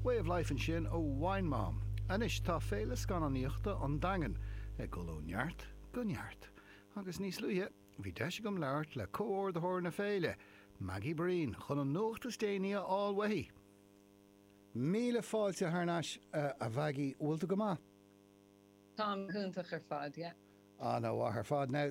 Way of Life ansin ó Wine Mom. Anois tá Féile Scannánaíochta an Daingin ag dul ó neart go neart agus níos luaithe bhí deis agam labhairt le comhordaitheoir na féile, Maggie Breen, chun an nuacht is déanaí a fháil uaithi. Míle fáilte thar n-ais, a Mhaggie. Bhfuil tú go maith? Táim go hiontach ar fad, yeah. Ana mhaith ar fad. Now.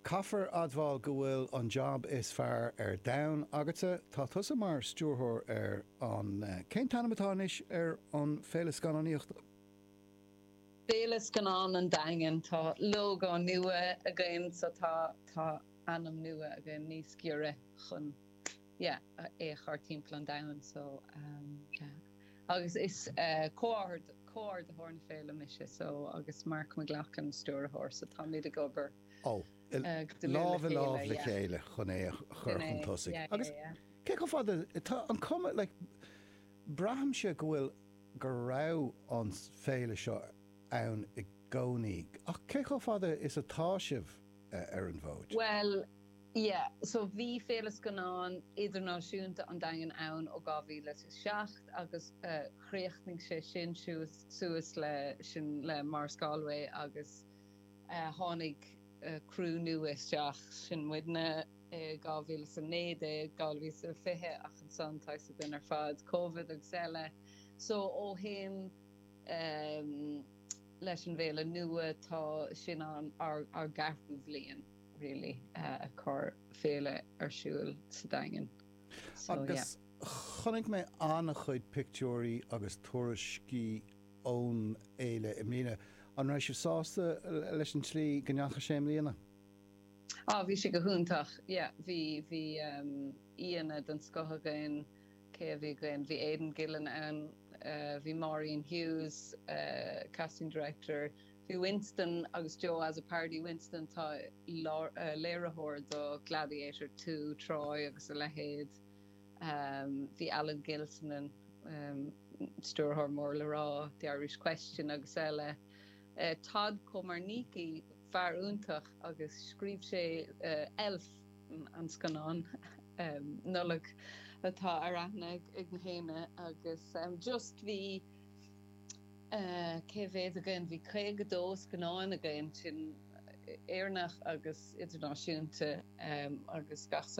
Caithfear admháil go bhfuil an jab is fearr ar domhan agatsa. Tá tusa mar stiúrthóir ar an, cén t-ainm atá anois ar an féile scannánaíochta? Féile Scannán an Daingin. Tá lógó nua againn so tá ainm nua againn níos giorra chun yeah é a chur timpeall an domhain so yeah agus is comhordaitheoir na féile mise so agus Mark McLoughlin stiúrthóir so táimid ag obair Ó, lámh i lámh le chéile chun é a chur chun tosaigh. Agus cé chomh fada, tá an cuma, like, braithimse go bhfuil, go raibh an féile seo ann i gcónaí, ach cé chomh fada is atá sibh ar an bhfód? Bhuel, yeah, so bhí Féile Scannán Idirnáisiúnta an Daingin ann ó 2007 agus críochnaigh sé sin suas le, sin le Maurice Galway agus. Tháinig criú nua isteach, sin muidne, i 2019, 2020 ach ansan tá a fhios againn ar fad, Covid agus eile. So ó shin leis an bhféile nua tá sin an ár gceathrú bhliain really ag cur féile ar siúil sa Daingean. So yeah. Agus chonaic mé an-chuid pictiúirí agus tuairiscí ón fhéile i mbliana. An raibh sibh sásta leis an tslí go ndeachaigh sé i mbliana? Ah, bhí sé go hiontach. Yeah, bhí, bhí aíonna den scoth againn. Cé a bhí againn? Bhí Aidan Gillen ann, bhí Maureen Hughes, casting director, bhí Winston agus Joe Azzopardi, Winston, tá léiritheoir do Gladiator Two, Troy agus a leithéid. Bhí Alan Gilsenan, Stiúrthóir mór le rá The Irish Question agus eile, Todd Komarnicki, fear iontach agus scríobh sé Elf, an scannán Nollag atá ar aithne ag na héinne, agus just bhí, cé mhéad againn? Bhí 52 scannán againn, sin Éireannach agus idirnáisiúnta, agus gach.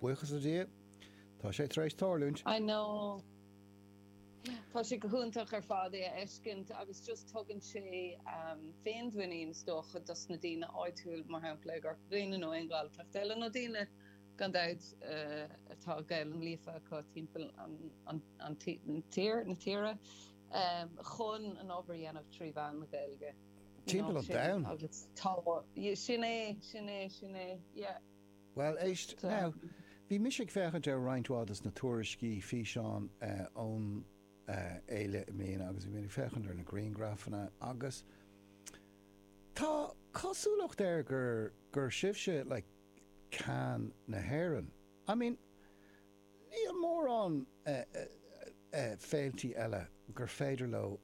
Buíochas le Dia, tá sé tar éis tarlúint. I know. Tá sé go hiontach ar fad é a fheiscint agus just tugann sé féinmhuinín is dócha dos na daoine áitiúil, mar shampla i gCorca Dhuibhne nó aon Ghaeltacht eile nó daoine gan dabht atá Gaelainn líofa acu timpeall an tír, na tíre, chun an obair a dhéanamh trí mheán na Gaeilge. You know, agus timpeall an domhain. Sin é, sin é, sin é, yeah. Bhuel, éist, now, bhí mise ag féachaint ar roinnt mhaith dos na tuairiscí, físeáin ón fhéile i mbliana agus bhí mé ag féachaint ar na griangrafanna agus tá cosúlacht air gur, gur sibhse like Cannes na hÉireann. I mean, níl mórán féiltí eile gur féidir leo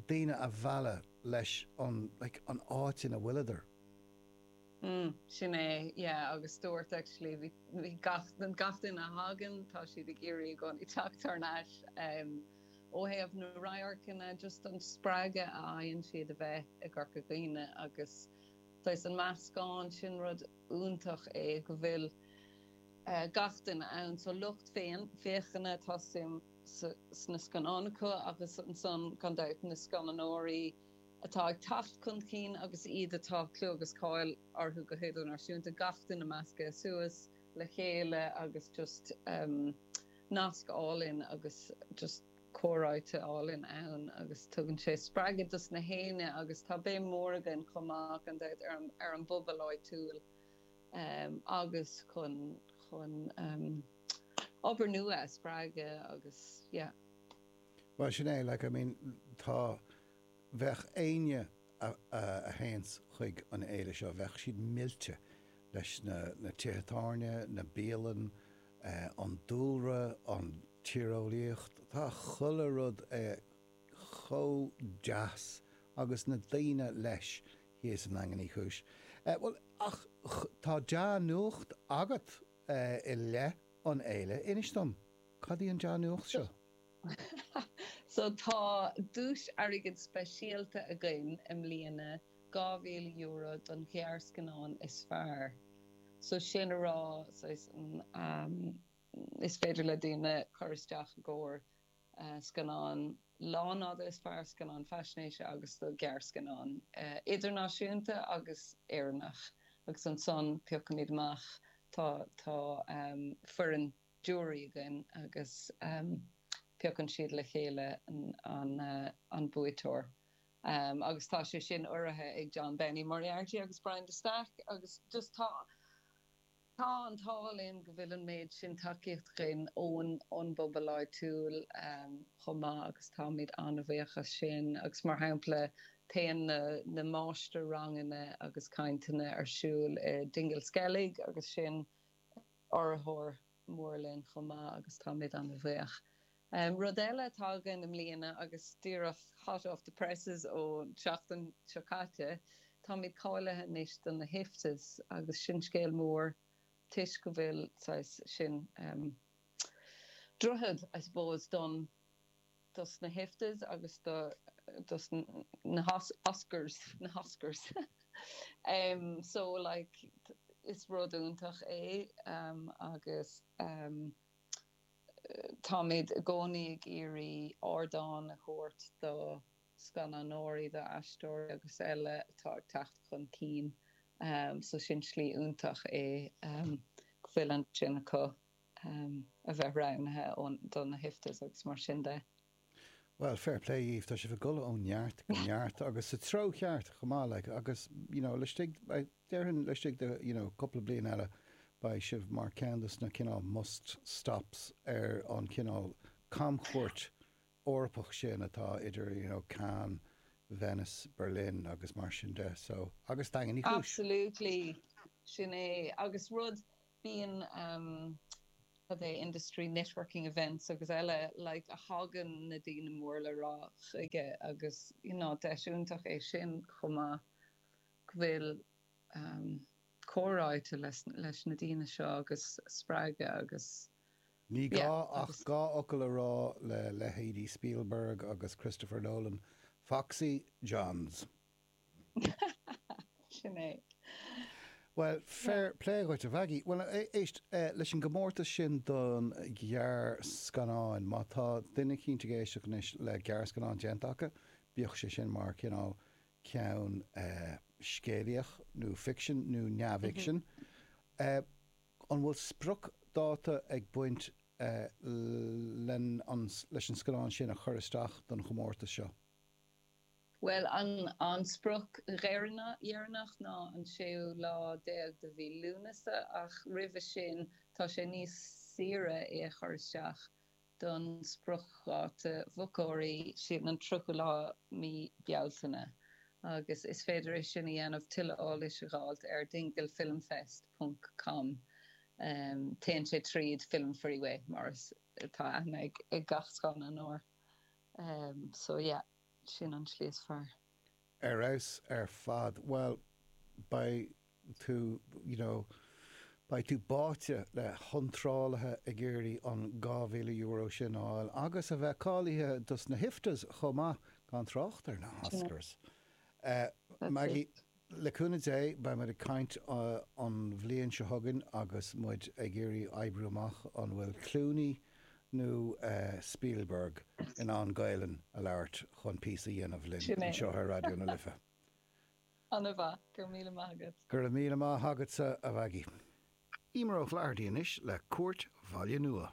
daoine a mhealladh leis an, like, an áit ina bhfuileadar. mm sin é yeah agus dúirt actually bhí bhí gach den gach duine a thagann tá siad ag iarraidh i gcónaí teacht thar n-ais em ó thaobh na radharcanna just an spreagadh a fhaigheann siad a bheith i gCorca Dhuibhne agus tá's agat an meascán sin rud iontach é go bhfuil eh gach duine ann so lucht fé féachana tá suim sa sna scannáin acu agus ansan gan dabht na scannánóirí atá ag teacht chun cinn agus iad atá clú agus cáil orthu go h-idirnáisiúnta, gach duine measctha suas le chéile agus just nasc álainn agus just comhráite álainn ann agus tugann sé spreagadh dos gach éinne agus tá béim mór againn chomh maith gan dabht ar an bpobal áitiúil agus chun chun obair nua a spreagadh agus yeah. Bhuel sin é, like I mean tá, Bheadh éinne a théanns chuig an fhéile seo, bheadh siad millte leis na tithe tábhairne, na bialanna, an dúlra, an tíreolaíocht, tá chuile rud chomh deas agus na daoine leis thíos i nDaingean Uí Chúis. Bhuel, ach tá dea-nuacht agat i leith an fhéile, inis dom, cad í an dea-nuacht seo? So tá duais airgid speisialta againn i mbliana, €2,000 don ghearrscannán is fearr. So sin le rá, saghas an, is féidir le daoine cur isteach i gcomhair scannán lánfhada is fearr, scannán faisnéise agus do ghearrscannán idirnáisiúnta agus Éireannach. Agus ansan piocaimid amach, tá, tá foireann. giúiré againn agus piocann siad le chéile an buaiteoir agus tá sé sin urraithe ag John Benny Moriarty agus Brian de Staic agus just tá tá an t-ádh linn go bhfuil an méid sin tacaíochta againn ón ón bpobal áitiúil chomh maith agus táimid an-bhuíoch as sin agus mar shampla téann na na máistir-ranganna agus cainteanna ar siúl i Dingle Skellig agus sin urraitheoir mór linn chomh maith agus táimid an-bhuíoch. Rud eile atá againn i mbliana agus díreach hot off the presses ón tseachtain seo caite, táimid cáilithe anois do na hIFTAs agus sin scéal mór toisc go bhfuil, saghas, sin droichead, I suppose, don. dos na hIFTAs agus dos na Oscars na hOscars so like is rud iontach é agus táimid i gcónaí ag iarraidh ardán a thabhairt do scannánóirí, do aisteoirí agus eile atá ag teacht chun cinn so sin slí iontach é go bhfuil ansin acu. a bheith roghnaithe do na hIFTAs agus mar sin de. Bhuel, fair play dhaoibh, tá sibh ag dul ó neart go neart agus sa treo cheart chomh maith, like, agus, you know, laistigh, déarfainn, laistigh de, you know, cúpla bliain eile, beidh sibh mar ceann dos na cineál must stops ar an chineál camchuairt Eorpach sin atá idir, you know, Cannes, Venice, Berlin agus mar sin de, so. Agus Daingean Uí Chúis! Absolutely! Sin é, agus rud. Bíonn industry networking events agus eile like a thagann na daoine mór le rá chuige agus you know deis iontach é sin chomh maith go bhfuil comhráite leis na daoine seo agus spreagadh agus. Ní gá ach dhá fhocal a rá le leithéidí Spielberg agus Christopher Nolan, Foxy Johns. Sin é. Bhuel, fair play dhuit, a Mhaggie. Bhuel, éist, leis an gcomórtas sin don ghearrscannán, má tá duine cinnte ag éisteacht anois le gearrscannán déanta acu, bíodh sé sin mar chineál ceann scéalaíoch nó ficsin nó neamhfhicsin, an bhfuil spriocdháta ag baint leis an scannán sin a chur isteach don chomórtas seo? Bhuel, an sprioc dheireanach deireanach ná an séú lá déag de mhí Lúnasa, ach roimhe sin tá sé níos saoire é a chur isteach don spriocdháta mhochóirí, sin an tríochú lá mí Bealtaine. Agus is féidir é sin a dhéanamh, tuilleadh eolais a dh'fháilt ar dinglefilmfest ponc com. Em, téann sé tríd Film Freeway, mar atá aithne ag gach scannánóir Um so yeah, sin an tslí is fearr. Ar fheabhas ar fad. Bhuel, beidh tú, you know, beidh tú báite le hiontrálaithe ag iarraidh an €2,000 sin a fháil agus a bheith cáilithe dos na hIFTAs chomh maith, gan trácht ar na hOscars. Eh, Maggie? Le cúnamh Dé, beidh muid ag caint an bhliain seo chugainn agus muid ag iarraidh oibriú amach an bhfuil Clooney nó Spielberg in ann Gaelainn a labhairt chun píosa a dhéanamh linn anseo ar Raidió na Life. Ana mhaith. Go raibh míle maith agat. Go raibh míle maith agatsa, a Mhaggie. Emer O'Flaherty anois le Cúirt Bhaile Nua.